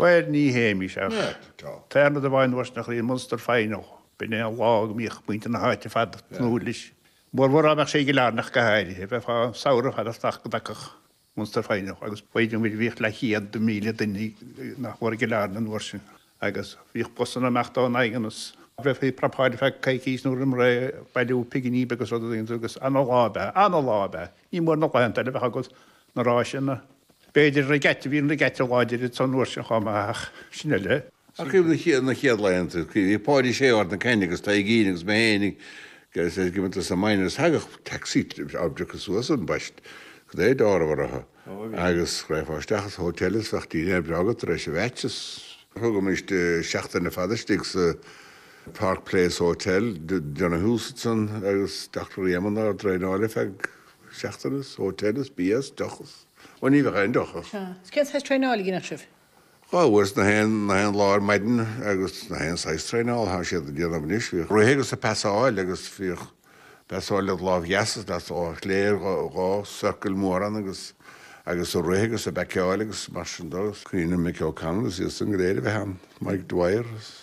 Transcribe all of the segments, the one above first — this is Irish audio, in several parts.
Bhuel, ní théimís ach táimid i bhfeidhm dho's nach raibh i Munster Final. B'in é an lá go mbíodh muintir na háite fada tnúth leis, mórmhór dá mbeadh sé i gCill Airne go háirithe. Bheifeá an samhradh fada ag teacht go dtagfadh Munster Final agus b'fhéidir go mbíodh leathchéad míle duine nach mór i gCill Airne an uair sin agus bhíodh busanna amach ón nDaingean is go bhfeicfí Prapáil ar feadh coicís nó roimh ré, bailiú pinginí beaga is rudaí agus ana-lá ab ea, ana-lá ab ea. Ní mór na laethanta eile a bheith agat. na ráiseanna. B'fhéidir regatta, bhí an regatta láidir ansan an uair sin chomh maith ach sin eile. Ar thaobh na chéad laethanta, bhí Páidí Shéó ar na cinn agus Taidhgín agus mé féin ag imirt sna minors thagadh taxi ár bpriocadh suas ón bpost cad é dá raibh orthu agus raghfá isteach sa hotel is bheadh dinnéar breá agat tar éis an mheaits is thugaimis seachtain ar fad istigh sa Park Place Hotel, Donahue is iad san agus Doctor Éamonn ár dtraenáil ar feadh seachtaine is hotel is bia is deoch is, ó ní bheadh aon dochar. Sea, 's cén saghas traenáil a dheineadh sibh? Dhá uair 's na haon, na haon lá ar maidin agus na haon saghas traenáil thá siad a' déanamh anois, bhíodh rith agus a' pasáil agus bhíodh pasáil led' láimh dheas is led' láimh chlé ar dhá, dhá circle mhóra agus, agus a' rith agus a' backeáil agus mar sin do, 's cuimhním Mick O'Connell is iad san go léir a bheith ann, Mick Dwyer is.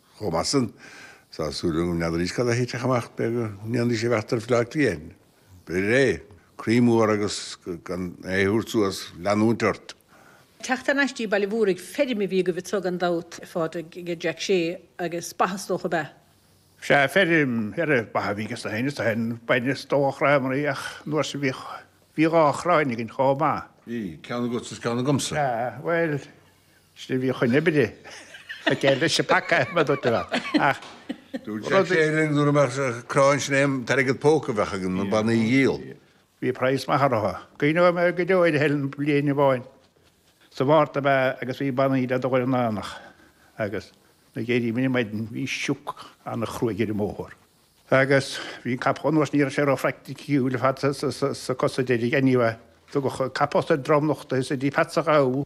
Chomh maith san, tá súil agam go, ní fheadaraís cad a thitfeadh amach, b'fhé' go ndéanfaidís an bheart ar Bhleá Cliath. B'fhéidir é. Croí mór agus gan é a thabhairt suas, leanúint ort. Teacht thar n-ais 'dtí Baile an Mhúraigh, feirm a bhí agaibh anso gan dabht, a Phádraig, ag a Jack Shea, agus ba is dócha, ab ea? Sea, feirm, ba a bhí ages na haoinne, tá shin, bainne is dócha chréamaraí an uair sin bhí, bhí dhá chráin againn chomh maith. Bhí, ceann agatsa is ceann agamsa. Sea, bhuel. Sin a bhí chun oibre. Ag déileáil leis an bpaca adhmaid, a dúirt mé. Ach Dúirt sé rud. linn nuair a bheireadh an chráin sin é t-airgead póca a bheadh againn, na banaí a dhíol. Bhí praghas maith orthu. Cuimhneoidh mé go deo ar Helen bliain amháin. Sa Mhárta ab ea agus bhí banaí le dul go dtí an aonach agus nuair a d'éiríomair ar maidin. Bhí sioc an-chruaidh ar an mbóthar agus bhí an capall anuas. Ní raibh sé ró-phraiticiúil ar fad sna cosa deiridh. Anyway, tugadh capall sa dromlach do Pheatsa Dhamh.